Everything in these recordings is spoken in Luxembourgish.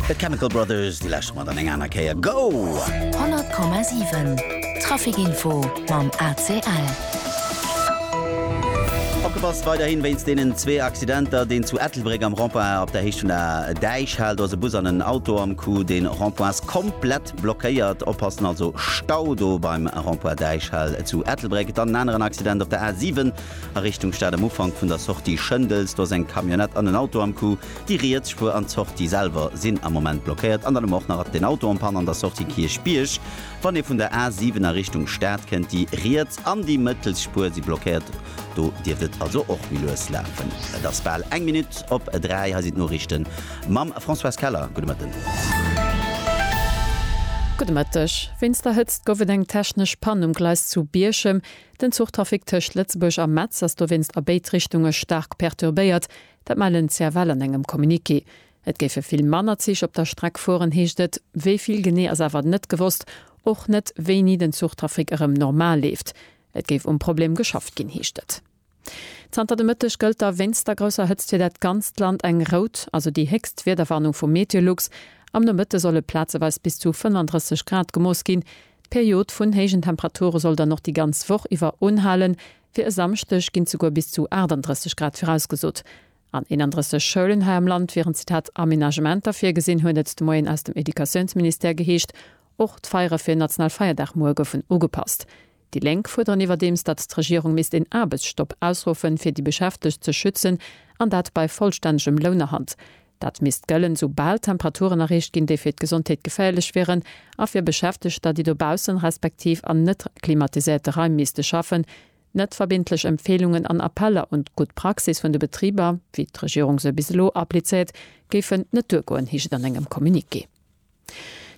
The Chemical Brothers, déi lescht Mol dann eng aner Kéier. Go! 100,7 Traficinfo mam ACL. Opgepasst weiderhin wéinst deenen zwee Accidenter. Deen zu Ettelbréck am Rond-point op der Héicht vun der Däich haalt. Do ass e Bus an en Auto am Coup. De Rond-point ass komplett blockéiert. Oppassen also, Stau do beim Rond-point Däichhal zu Ettelbréck. Dann en aneren Accident op der A7. A Richtung Stad am Ufank vun der Sortie Schëndels, do ass eng Camionnette an en Auto am Coup. Déi riets Spuer an d'Sortie selwer sinn am Moment blockéiert. An dann hu mer och nach den Auto en panne an der Sortie Kierchbierg. Wann ee vun der A 7 a Richtung Stad kënnt, déi riets an déi mëttelst Spuer si blockéiert. Do dierft et also och méi lues lafen. Et ass bal eng Minutt op 3. Hei sinn d'Noriichte mam Françoise Keller. Gudde Mëtten. Gudde Mëtteg. Wéinst der Hëtzt gouf et eng technesch Pann um Gleis zu Bierchem. Den Zuchtrafic tëscht Lëtzebuerg a Metz ass dowéinst a béid Richtunge staark perturbéiert. Dat mellen d'CFL an engem Communiqué. Et géife vill manner Zich op der Streck fueren, heescht et. Wéi vill genee ass awer net gewosst, och net wéini den Zuchtrafic erëm normal leeft. Et géif um Problem geschafft ginn, heescht et. Zanter de Mëtteg gëllt da wéinst der grousser Hëtzt fir dat ganzt Land eng rout, also déi héchst Wiederwarnung vu Meteolux. Am Nomëtte solle plazeweis bis zu 35 Grad gemooss ginn. D'Period vun héijen Temperature soll dann och déi ganz Woch iwwer unhalen. Fir e Samschdeg ginn souguer bis zu 38 Grad virausgesot. An 31 Schoulen hei am Land wieren Zitat Aménagementer virgesinn, huet et de Moien aus dem Educatiounsministère geheescht. Och d'Feiere fir en national Feierdag muer goufen ugepasst. Déi Lénk fuerderen iwwerdeems, datt d'Regierung misst een Aarbechtsstopp ausruffen, fir déi Beschäftegt ze schützen, an dat bei vollstännegem Lounerhalt. Dat misst gëllen, sou bal Temperaturen erreecht ginn, déi fir d'Gesondheet geféierlech wieren, a fir Beschäftegter, déi dobaussen respektiv an net klimatiséierte Raim misste schaffen. Net verbindlech Empfeelungen an Appeller un d'gutt Praxis vun de Betriber, wéi d'Regierung se bis elo applizéiert, géifen net duergoen, heescht et an engem Communiqué.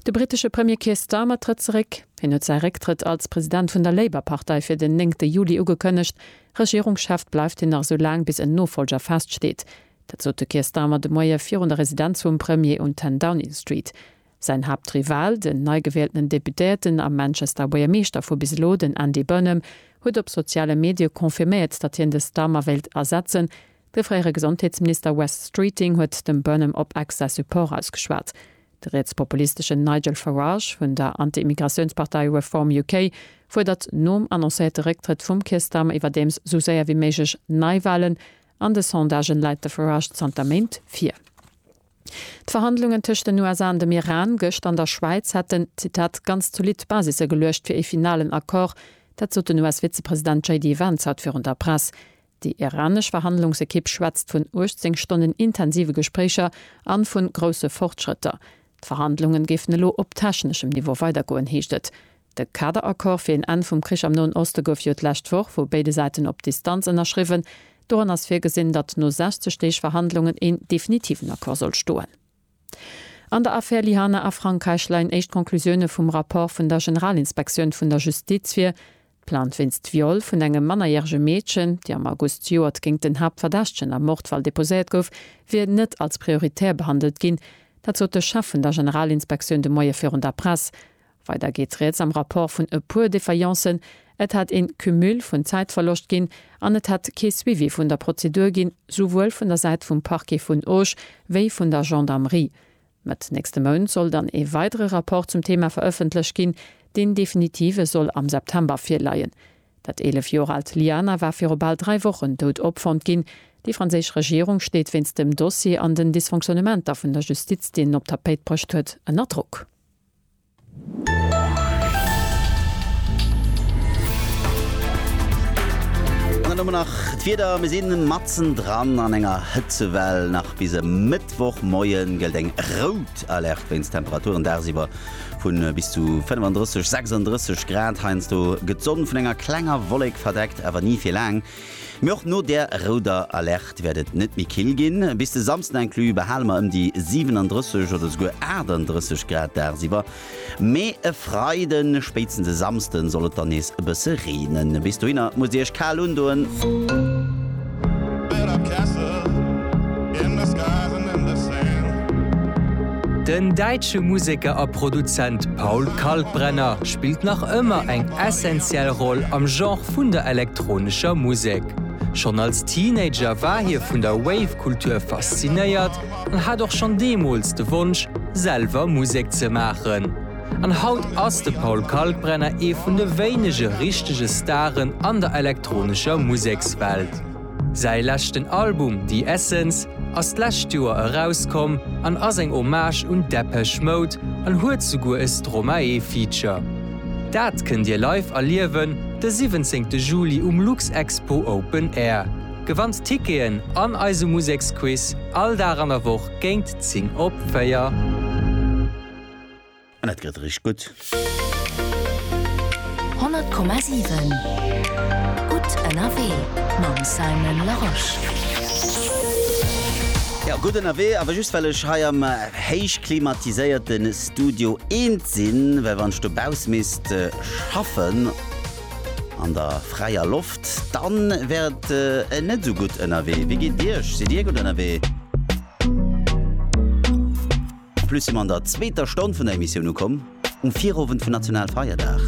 De brittesche Premier Keir Starmer trëtt zeréck. Hien huet säi Récktrëtt als President vun der Labour-Partei fir den néngte Juli ugekënnegt. Regierungschef bleift hien nach esou laang, bis en Nofollger feststeet. Dat sot de Keir Starmer de Moie virun der Residenz vum Premier un 10 Downing Street. Säin Haaptrival, den neigewieltenen Deputéierten a Manchester Buergermeeschter vu bis elo, den Andy Burnham, huet op soziale Medie confirméiert, datt hien de Starmer wéilt ersetzen. De fréiere Gesondheetsminister Wes Streeting huet dem Burnham op Ex säi Support ausgeschwat. De rietspopulisteschen Nigel Farage vun der Anti-Immigratiounspartei Reform UK fuerdert nom annoncéierte Récktrëtt vum Keir Starmer iwwerdeems sou séier wéi méiglech Neiwalen. An de Sondagen läit de Farage zanter Méint vir. D'Verhandlungen tëscht den USA an dem Iran gëscht an der Schwäiz hätten, Zitat, ganz zolidd Basisse geluecht fir ee finalen Accord. Dat sot den US-Vizepresident JD Vance haut virun der Press. Déi iranesch Verhandlungsekipp schwätzt vun 18 Stonnen intensive Gespréicher an vu grousse Fortschrëtter. D'Verhandlungen géifen elo op techneschem Niveau weidergoen, heescht et. De Kaderaccord fir een Enn vum Krich am Noen Oste gouf jo d'lescht Woch vu béide Säiten op Distanz ënnerschriwwen. Doran ass virgesinn, datt no 60 Deeg Verhandlungen een definitiven Accord soll stoen. An der Affär Lihane a Frankräich leien éischt Conclusioune vum Rapport vun der Generalinspektioun vun der Justiz vir. D'Plainte wéinst Viol vun engem mannerjärege Meedchen, déi am August zejoert géingt den Haaptverdächtegen am Mordfall deposéiert gouf, wier net als prioritär behandelt ginn. Dat sot de Chef vun der Generalinspektioun de Moie virun der Press. Weider geet rieds am Rapport vun e puer Défaillances, Et hätt een Cumul vun Zäitverloscht ginn an et hätt kee Suivi vun der Prozedur ginn, souwuel vun der Säit vum Parquet vun Auch wéi vun der Gendarmerie. Mëtt nächste Mount soll dann ee weidere Rapport zum Thema verëffentlech ginn. Deen definitive soll am September virleien. Dat 11 Joer aalt Liana war viru bal dräi Wochen dout opfonnt ginn. Déi franséisch Regierung steet wéinst dem Dossier an den Dysfonctionnementer vun der Justiz, deen en op d'Tapéit bruecht huet, ënner Drock. An dann hu mer nach d'Wieder. Mir sinn matzendran an enger Hëtzewell. Nach bis e Mëttwochmoie gëllt eng rout Alerte wéinst Temperaturen dagsiwwer vu bis zu 35, 36 Grad. Heiansdo gëtt d'Sonn vun enger klenger Wollek verdeckt, awer ni fir laang. Mee och no där rouder Alerte wäert et net méi kill ginn. Bis de Samsden inclus behale mer ëm déi 37 oder esouguer 38 Grad dagsiwwer. Mee e Freiden, spéitstens e Samsden soll et dann nees e bësse reenen. Bis dohinner musst dir iech kal undoen. Den däitsche Museker a Produzent Paul Kalkbrenner spillt nach ëmmer eng essentiell Roll am Genre vun der elektronescher Musek. Schonn als Teenager war hie vun der Wave-Kultur faszinéiert an hat och schonn deemools de Wonsch, selwer Musek ze maachen. An haut ass de Paul Kalkbrenner ee vun de wéinege richtege Staren an der elektronescher Musekswelt. Säi leschten Album The Essence ass d'lescht Joer erauskomm an ass eng Hommage un Depeche Mode an huet souguer e Stromae-Feature. Dat kënnt Dir live erliewen de 17 Juli um Luxexpo Open Air. Gewannt Ticketen an eise Museksquiz all Dag an der Woch géint 10 op 4. An et gëtt eréischt gutt. 100,7 Gutt ënnerwee mam Simon Larosche. Jo, gutt ënnerwee, awer just well ech hei am héichklimatiséierte Studio eent sinn, well wann ech dobauss misst schaffen an der fräier Loft, dann wär et net esou gutt ënnerwee. Wéi geet Iech? Sidd Dir gutt ënnerwee? En plus si mer an der zweeter Stonn vun der Emissioun ukomm, um Virowend vun Nationalfeierdag.